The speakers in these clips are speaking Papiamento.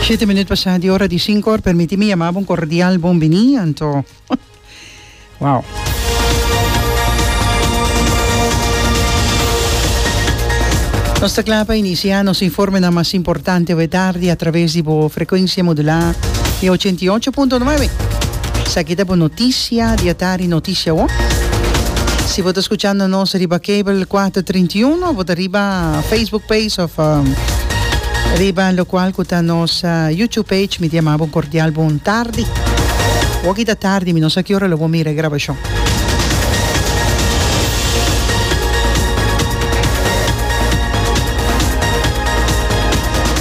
Shete minut pasá di ora di sinkor, permití mi yamá bo un kordial bon biní, anto. Wou. Nos ta kla pa inisiá nos informenan mas importante awe tardi a traves di bo frekuensia modulá di ochenta i ocho punto nuebe. Esaki ta bo notisia di atardi, notisia wou. Si bo ta skuchando nos riba kebel kuater treinta i uno, bo ta. Riba Facebook page of riba locual cu ta nos YouTube page mi diamabo un cordial bon tardi. Waki ta tardi mi no sa kiora lo bo mira e grabacion.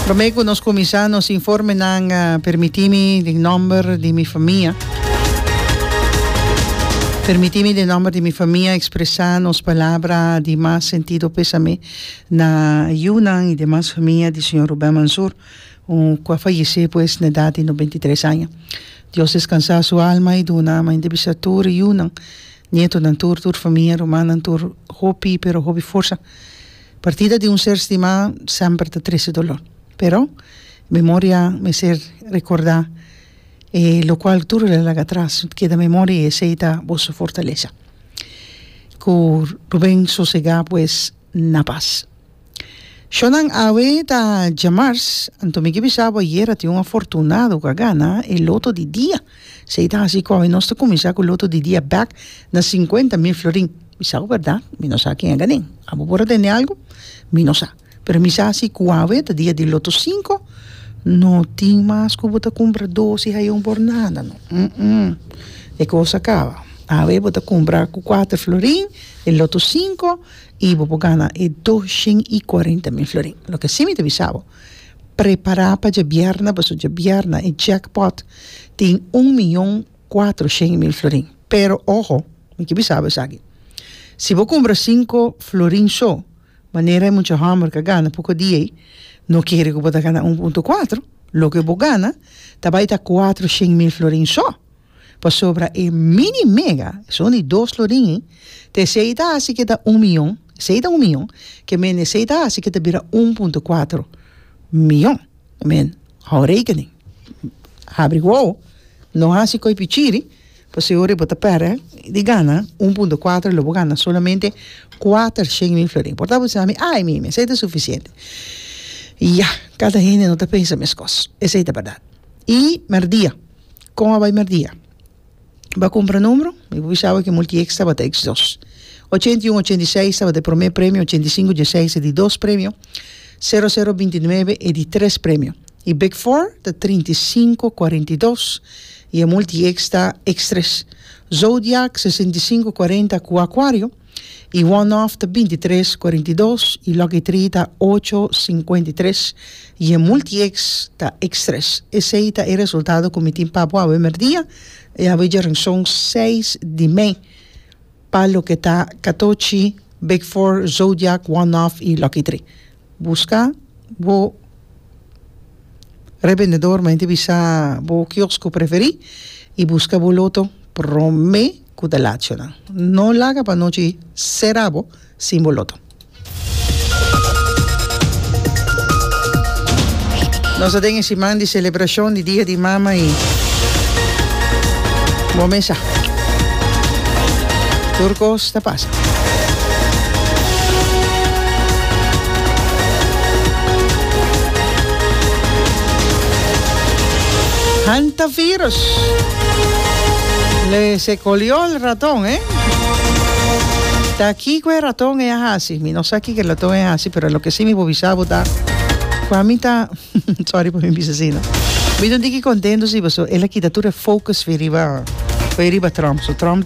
Prome cu nos cuminsa nos informenan permitimi di nomber di mi famia. Permiti mi den nomber di mi famia expresa nos palabra di mas sentido pesame na yunan y demas famia di señor Ruben Mansour cu a fayece pues na edad di noventa y tres aña. Dios descansa su alma y duna mente bisa tur e yunan, nietonan tur, tur famia, rumannan tur hopi pero hopi forsa. Partida di un ser stima semper ta trece dolor pero memoria mester recorda. E lo cual tur lo laga atras no ta keda memoria y esey ta boso fortalesa. Cu Ruben sosega pues na paz. Shonan awe ta djamars, anto mi ke bisa bo ayer a tin un afortunado cu a gana e loto di dia. Esey ta haci cu awe nos ta cuminsa cu loto di dia bek na cincuenta mil florin. Bisa bo berdad? Mi no sa ken a ganen. Abo por a tende algo? Mi no sa. Pero mi sa si cu awe ta dia di loto cinco no tin mas cu bo ta cumpra doce hayo por nada no umm e cosa a caba awe bo ta cumpra cu cuatro florin e loto cinco y bo por gana e doshen y cuarenta mil florin loke si mi ta bisa bo prepara pa djabièrna pasobra djabièrna e jack pot tin un miyon cuatroshen mil florin pero oho mi ke bisa bo esaki si bo cumpra cinco florin so Manera e mucha hòmber ka gana poko dia ei, no kere ku bo ta gana un punto kuatro. Loke bo gana ta bai ta kuatro shen mil florin sò. Pasobra e mini mega, esun di dos florin ei, ta esei ta hasi ke ta un miyon, esei ta un miyon, ke mende esei ta hasi ke ta bira un punto kuatro miyon. Hou rekening. Habri wou, no hasi koipichiri. Por si ora bo ta perde di gana un punto kuater y lo bo gana solamente kuater shen mil florin por tabatin sa ami ay mimi esey ta suficiente ya kada hende no ta pensa meskos esey ta berdad y merdia con a bay merdia ba cumpra numero mi bo bisa awe ke multiex tabata ex dos ochenta y un ochenta y seis tabata e prome premio ochenta y cinco dieseis e di dos premio sero sero binti nuebe e di tres premio y big four ta trinta y cinco cuarenta y dos I e multieks ta Extres, Zodiak sesenta i sinku kuarenta ku Akuario, i One Off ta binti tres kuarenta i dos i Lucky Tree ta ocho sinkuenta i tres i e multieks ta Extres. Esei ta e resultado ku mi tin pa bo awe merdia, e awe djerinson seis di mei, pa loke ta Katochi, Big Four, Zodiak, One Off i Lucky Tree. Buska bo rebendedor mei te bisa bo kiosk ku preferi i buska bo loto prome ku ta lacho nan. No laga pa anochi sera bo sin bo loto. Nos ta den e siman di selebrashon di Dia di Mama i bo mesa tur kos ta pasa. Hantavirus. Le se colió el ratón, ¿eh? Ta kiko e ratón e hasi. Mi no sa kiko e ratón e hasi, pero lo que sí mi bobisa bota. Kwami ta... Sorry por mi bisa si, no? Mi don diki contento si, so el kita tur e focus fi riba, fi riba Trump. So Trump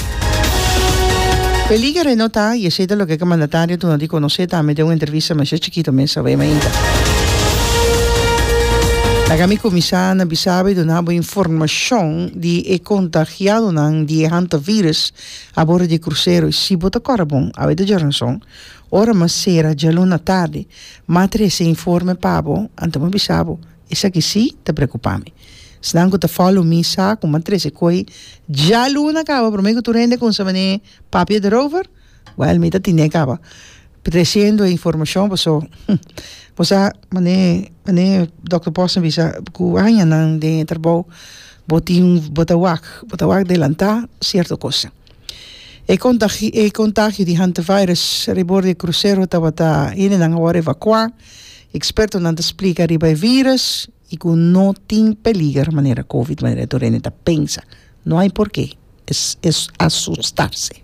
Peliger e no ta y esey ta loke cu mandatario duna di conoce tambe den un entrevista mester chikito mes awe mainta. Laga mi cuminsa na bisabo y duna bo informacion di e contagiadonan di e hantavirus a bordo di e crucero y si bo ta cora bon awe ta djora nos son ora mas sera djaluna tardi matra esey informe pa bo anto mi bisa bo Esaki sí ta preocupa mi. Esnan cu ta follow mi sa cu m'ha trece coy djaluna caba prome cu tur hende cunsa mane papia derover, well mi ta tine caba trecendo e informacion paso bo sa mane mane Doctor Posner bisa cu aña nan den e trabao bo tin bo ta wak bo ta wak delanta cierto cosnan. E contagio di hantavirus ribor di e crucero tabata hende nan awor evacua. Expertonan ta splica riba e virus y cu no tin peliger manera covid manera tur hende ta pensa. No hay porque asustarse.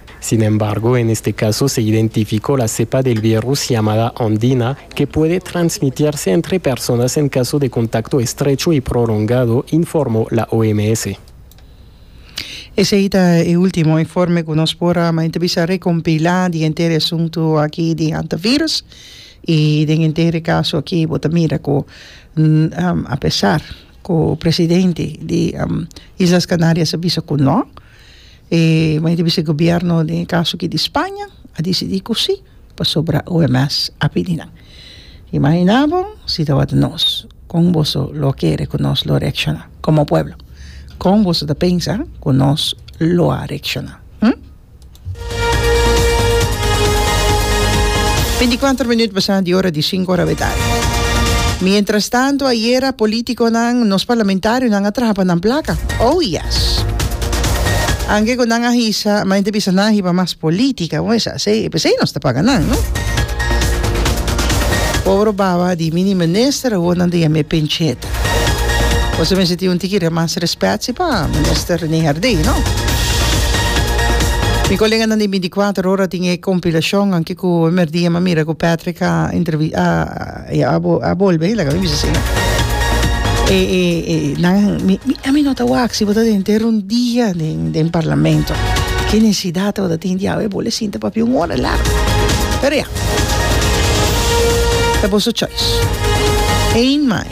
Sin embargo, en este caso se identificó la cepa del virus llamada Ondina, que puede transmitirse entre personas en caso de contacto estrecho y prolongado, informó la OMS. Esey ta e ultimo informe cu nos por a mainta bisa recompila di henter e asuntu aki di hantavirus y den henter e caso aki bo ta mira cu apesar cu presidente di Islas Canarias a bisa cu no E mani ta bisa e gobierno den e kaso aki di Spaña a disidí ku sí pasobra OMS a pidi nan. Imaginá bo si tawata nos, kon boso lo kere ku nos lo reakshoná? Komo pueblo, kon boso ta pensa ku nos lo a reakshoná? Hm? Binticuater minuut pasa di ora di sinku ora de tardi. Mientras tanto ayera politiconan, nos parlamentarionan a traha pa nan placa. Oh yes! Anke cu nan a hisa, ma ente bisa nan a hiba mas politica, bo mesa asey, e pesey nos ta paga nan, no? Pobre baba di mini minister awor nan ta yam'e penchet. Bo ta mester tin un tiki de mas respet si pa Minister Rene Herdey, no? Mi koleganan di binticuater ora tin e compilacionnan ke ku e merdía mi a mira ku Patrick a entrevi a a a bolbe hila ku mi bisa asina. E e e nan mi mi a mi no ta wak si bo ta den ter un dia den den Parlamento. Ke necesidad tabata tin di awe bole sinta papia un ora largu. Pero ya. Ta boso choice. Eén mai.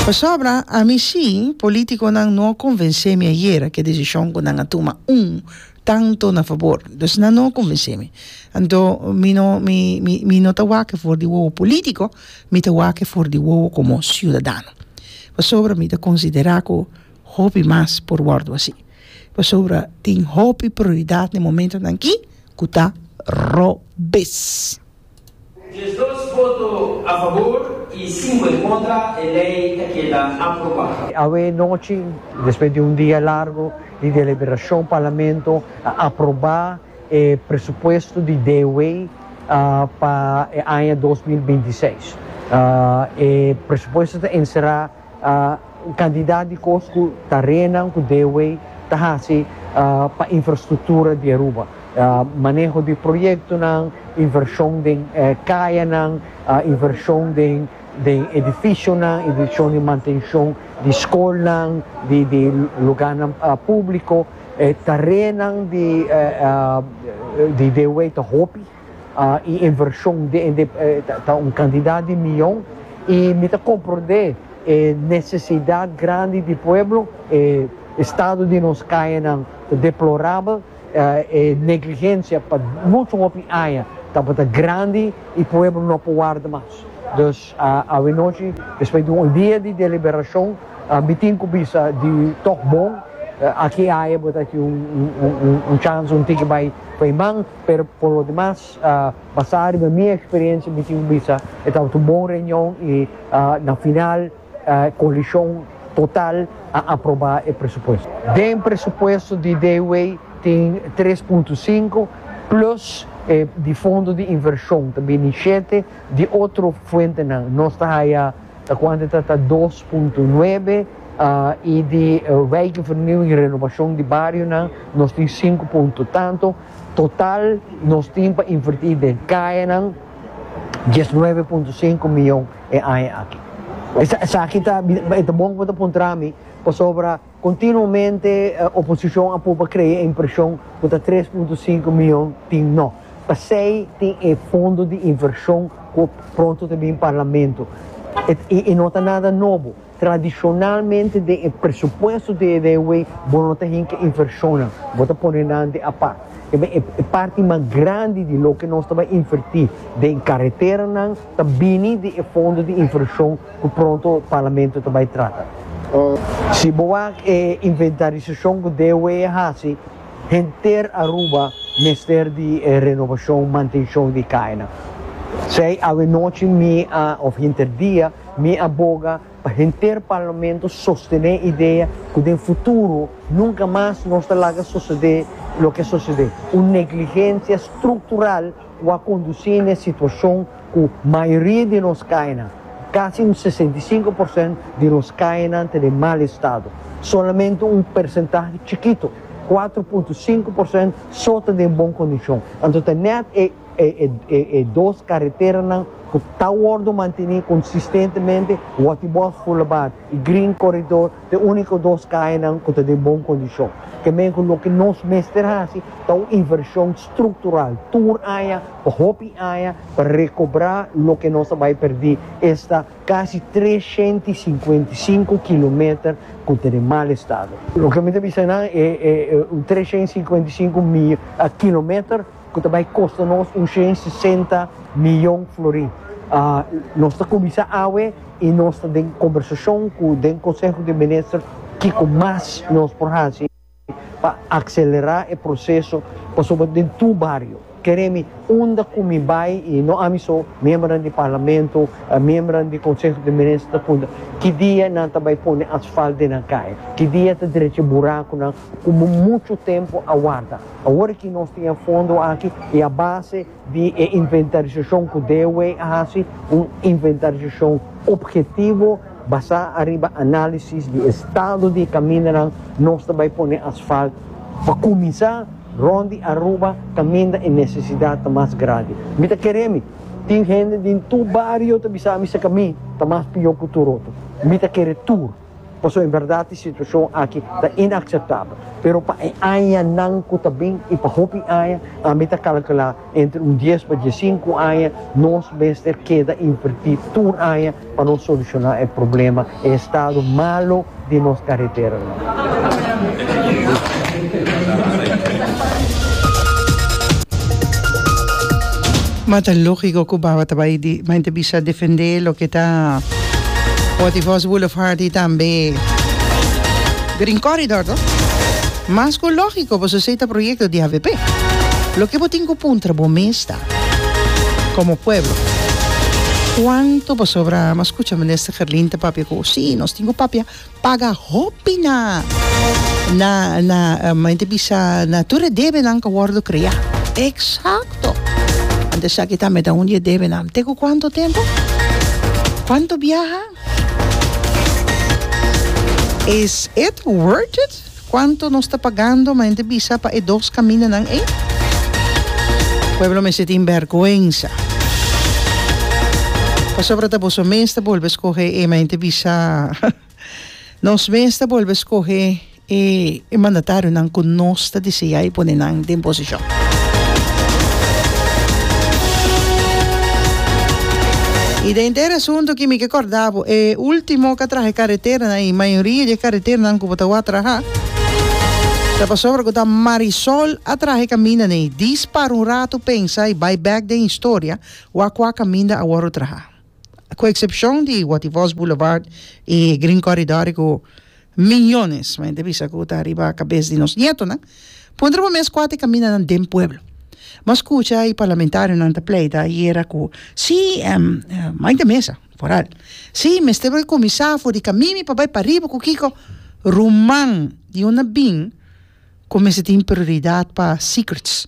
Pasobra a mi sí politiconan no a convencé mi ayera cu e decision cu nan a tuma un tanto na fabor. Dus nan no a convencé mi. Anto mi no mi mi mi no ta wak for di wowo politico, mi ta wak for di wowo como ciudadano. Pasobra mi ta considera cu hopi mas por wordo así. Pasobra tin hopi prioridad na e momentonan ki. ku ta robes. Diesdos voto a fabor y cinco en contra, e ley ta keda aprobá. Awe nochi, despues di un dia largo di deliberacion, Parlamento a aproba e presupuesto di DW pa e aña dos mil binti seis. E presupuesto ta encerá. cantidad di cos cu tarenan cu Dewey ta haci pa infrastructura di Aruba, maneho di proyectonan, inversion den cayanan, inversion den edificionan, inversion den mantencion di scolnan, di lugarnan publico, tarenan di Dewey ta hopi. y inversion den ende ta un cantidad di miyon y mi ta comprende e necesidad grandi di pueblo, e estado di nos cayanan ta deplorabel, e negligencia pa mucho hopi aña tabata grandi y pueblo no por warda mas. Dus awanochi despues di un dia di deliberacion mi tin cu bisa di tok bon aki aña bo ta tin un chance un tiki bay pay man, Pero por lo demas, basá riba mi eksperensia mi tin bisa e tabata un bon reunion i na final koalishon total a aprobá e presupuesto. Den presupuesto di Dewey tin tres punto sinku plus e di fondo di invershon ta bini shete di otro fuentenan nos ta haya ta kuantu ta ta dos punto nuebe i di wijkvernieuwing i renobashon di barionan nos tin sinku punto tantu. Total nos tin pa invertí den kayanan, dies nuebe punto sinku mion e aña aki. Esaki ta e ta bon ku bo ta puntra mi, pasobra kontinuamente oposishon a pruba krea e impreshon ku ta tres punto sinku mion tin no. Pasei tin e fondo di invershon ku pronto ta bin parlamento. E no ta nada nobo. Tradishonalmente den e presupuesto di e railway bo no ta hinka invershonnan, bo ta pone nan den apart. Kiba e parti mas grandi di loke nos ta bai invertí den kareteranan ta bini di e fondo di invershon ku pronto Parlamento ta bai trata. Si bo wak e inventarisashon ku DOE a hasi, henter Aruba mester di renobashon, mantenshon di e kainan. Sei awe nochi mi a òf hinter dia Mi a boga pa henter parlamento sostené idea ku den futuro nunka mas nos ta laga sosodé loke a sosodé, un negligensia struktural ku a kondusí na e situashon ku mayoria di nos kaenan, kasi un sesenta i sinku porsent di nos kaenan ta den mal estado. Solamente un persentahe chikito, kuatro punto sinku porsent, so ta den bon kondishon. Anto ta nèt e. E dos kareteranan ku ta wòrdu mantené konsistentemente, Waterbocht Boulevard i Green Corridor, ta e úniko dos kayanan ku ta den bon kondishon. Ke men ku loke nos mester hasi ta un invershon struktural tur aña pa hopi aña pa rekobrá loke nos a bai pèrdí esta kasi tres shenta i sinkuenta i sinku kilometer ku ta den mal estado. Loke mi ta bisa nan e tres shenta i sinkuenta i sinku mil kilometer. ku ta bai kosta nos un shen i sesenta miyon florin. Nos ta kuminsá awe i nos ta den kombersashon ku den Konseho di Minister kiko mas nos por hasi pa akselerá e proseso pasobra den tur bario, kere mi unda ku mi bai i no ami so, miembernan di Parlamento, miembernan di Konseho di Minister ta punta ki dia nan ta bai pone asfalt den nan kai, ki dia ta drecha burakunan. ku bo muchu tempu a warda. Awor ki nos tin e fondo aki i a base di e inventarisashon ku DOW a hasi, un inventarisashon opgetivo basá ariba análisis di estado di e kamindanan, nos ta bai pone asfalt pa kuminsá rònt di Aruba kaminda e nesesidat ta mas grandi. Mi ta kere mi tin hende den tur bario ta bisa mi sekamí ta mas pió ku tur otro. Mi ta kere tur. Pasobra en berdad e situacion aki ta inaceptabel, pero pa e añanan cu ta bin y pa hopi aña, ami ta calcula entre un dies pa diescinco aña, nos mester keda inverti tur aña pa nos soluciona e problema, e estado malo di nos careteranan. Ma ta logico cu Baba ta bay di bay ta bisa defende loke ta. Waterfalls Boulevard y tambe Green Corridor to. Mas cu logico pasobra esey ta proyecto di avp. Loke bo tin cu puntra bo mes ta, como pueblo, cuanto pasobra a scucha Minister Gerlin ta papia cu si nos tin cu papia. paga hopi na na na mente bisa na tur e debenan ku a wòrdu kreá. Eksakto! Ant esaki ta meda un di e debenan. Te ku kuantu tempu? Kuantu biaha? Is it worth it? Cuanto nos ta pagando ma hende bisa pa e dos caminanan ey? Pueblo mester tin bergüenza. Pasobra ta boso mes ta bolbe scoge e ma hende bisa nos mes ta bolbe scoge e mandatarionan cu nos ta desea y pone nan den posicion. Y den te e razon toki mi ke corda bo e ultimo catraje carreteranan y mayoria di e carreteranan cu Bo ta wak traha? Ta pasobra ku ta Marisol a traha e kaminda nei. Dis para un ratu pensa i bai bèk den historia wak kua kaminda a wòru traha. Ku eksepshon di Wativos Boulevard i Green Corridore ku miñones men ta bisa ku ta riba kabes di nos nietonan, puntra bo mes kua ta e kamindanan den pueblo. Bo a skucha i parlamentarionan ta pleida yera ku sí, maita mesa. Koret. Sí, mester por e kuminsá for di kamimi pa bai pariba ku kiko? Ruman di unda bin ku mester tin prioridat pa secrets?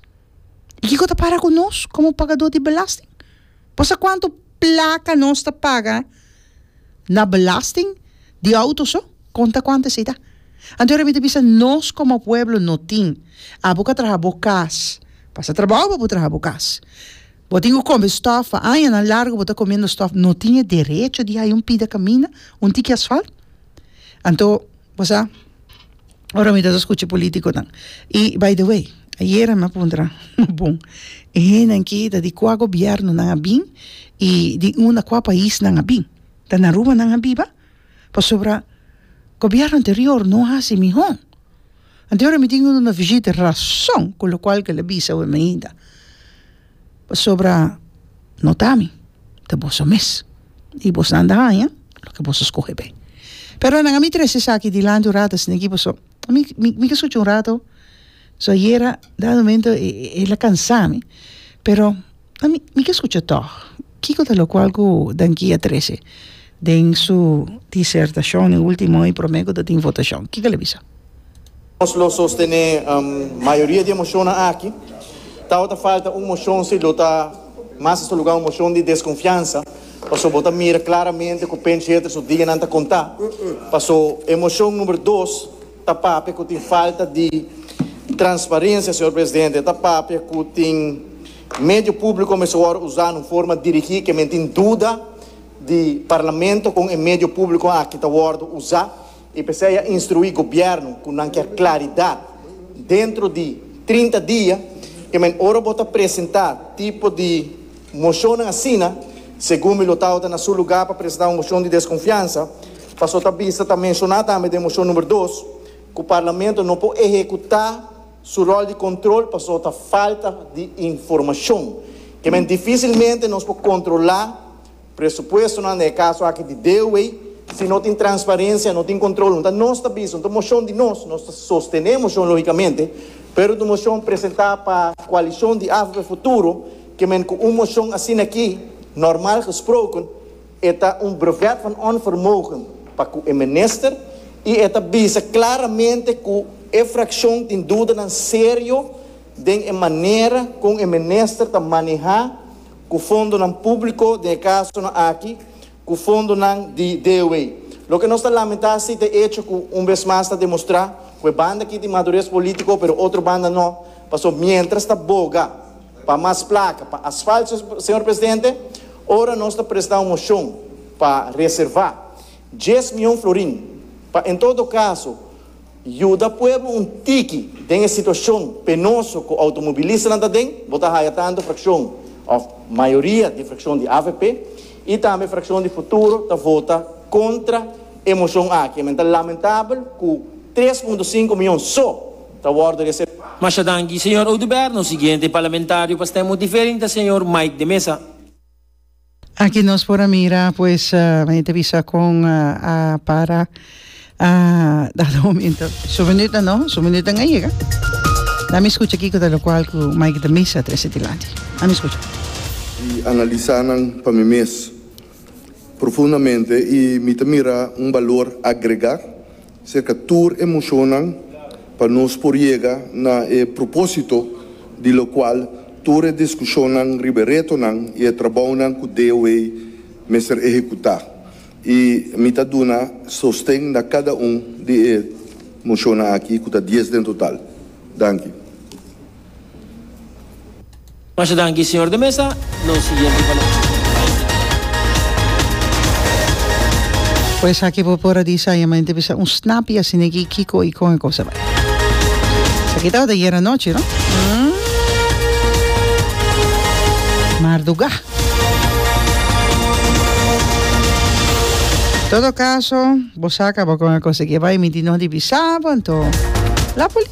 I kiko ta para ku nos komo pagadó di belasting? Bo sa kuantu plaka nos ta paga na belasting di outo so? Konta kuantu esei ta. Anto yora mi ta bisa nos komo pueblo no tin. Abo ka traha bo kas, pasa trabou pa bo traha bo kas. Bo tin ku kome stòf, pa añanan largu bo ta komiendo stòf, no tin e derecho di haña un pida kaminda un tiki asfalt? Anto bo sa, ora mi ta sa skucha e polítikonan, i by the way, ayera mi a puntra nan, ma bon, e hendenan aki ta di kua gobièrnu nan a bin i di unda, kua pais nan a bin? Ta na Aruba nan a biba? Pasobra gobièrnu anterior no hasi mihó. Anto ora mi tin un na vishita rason ku lokual ke lo bisa awe mi ainda pasobra no ta mi ta boso mes i bos nan ta haña loke bos a skohe pe pero nan a mi trese esaki dilanti un rato esnei ki paso mi mi ke skucha un rato so ayera dado momento e e la kansa mi pero Ta mi mi ke skucha tòg kiko ta lokual ku Dan Kia trese den su disertashon e último hoy promé ku ta tin votashon? Kiko el a bisa? Nos lo sostené mayoria di e moshonnan aki. Tabata falta un moshon si lo ta mas ta su lugá un moshon di deskonfiansa pasobra bo ta mira klaramente ku Pence Heter su dianan ta kontá. Paso e moshon number dos. Ta papia cu tin falta di transparencia, señor Presidente. Ta papia cu tin medio publico mester worde usa na un forma dirigi cu men tin duda di Parlamento con e medio publico aki ta worde usa. Y p'esey a instrui Gobierno cu nan kier claridad dentro di trinta dia cu men ora bo ta presenta tipo di. Mocionnan asina, segun mi lo tawata na su lugar pa presenta un mocion di desconfiansa, paso ta bista ta menciona tambe den mocion number dos cu Parlamento no por ehecuta su rol di control paso ta falta di informacion. Ke men dificilmente nos por controla presupuestonan, na e caso aki di DOW, si no tin transparencia, no tin control. Hunta nos ta bisa, hunta mocion di nos, nos ta sostene e mocion logicamente, pero ta un mocion presenta pa coalicion di AVP Futuro, Kimen ku un moshon asina aki, normal gesproken, e ta un brevet van onvermogen pa ku e minister i e ta bisa klaramente ku e frakshon tin dudanan serio den e manera kon e minister ta manehá ku fondonan públiko, den e kasonan aki ku fondonan di DOW. Loke nos ta lamentá si ta e echo ku un bes mas ta demostrá ku e banda aki tin madures polítiko pero otro banda no, pasobra miéntras ta boga. pa mas plaka, pa asfalt, señor presidente, ora nos ta presta un mocion pa reserva dies mion florin pa en todo caso yuda pueblo un tiki den e situacion penoso cu automobilistanan ta den, bo ta haya tanto fraccion of mayoria di fraccion di avp y tambe fraccion di Futuro ta vota contra e mocion aki. Mente lamentabel cu tres punto cinco mion so. ta worde resep. Masha danki señor Oduber, nos siguiente parlamentario pa stem motivering ta señor Mike de Meza. Aki nos por a mira pues mei ta bisa con a para a dado momento su minuto no su minutonan a yega la mi scucha kico ta locual cu Mike de Meza a trece dilanti la mi scucha. di analisa nan pa mi mes profundamente y mi ta mira un balor agrega Serka tur e mocionnan pa nos por yega na e propósito di locual tur e discusionnan riba e retonan y e trabounan cu DOA mester ehecuta y mi ta duna sosten na cada un di e mocionnan aki cu ta dies den total. Danki. Masha danki señor de mesa, nos siguiente palabra. Cu esaki bo por a di sabiamente bisa un snap y a sinegi kico y con e cosa bay. Esaki tabata ayer anochi, no? Mm. Marduga. Todo caso, bo saca bo con e cosa que bay mi di no di bisa, bo, entonces. La polis.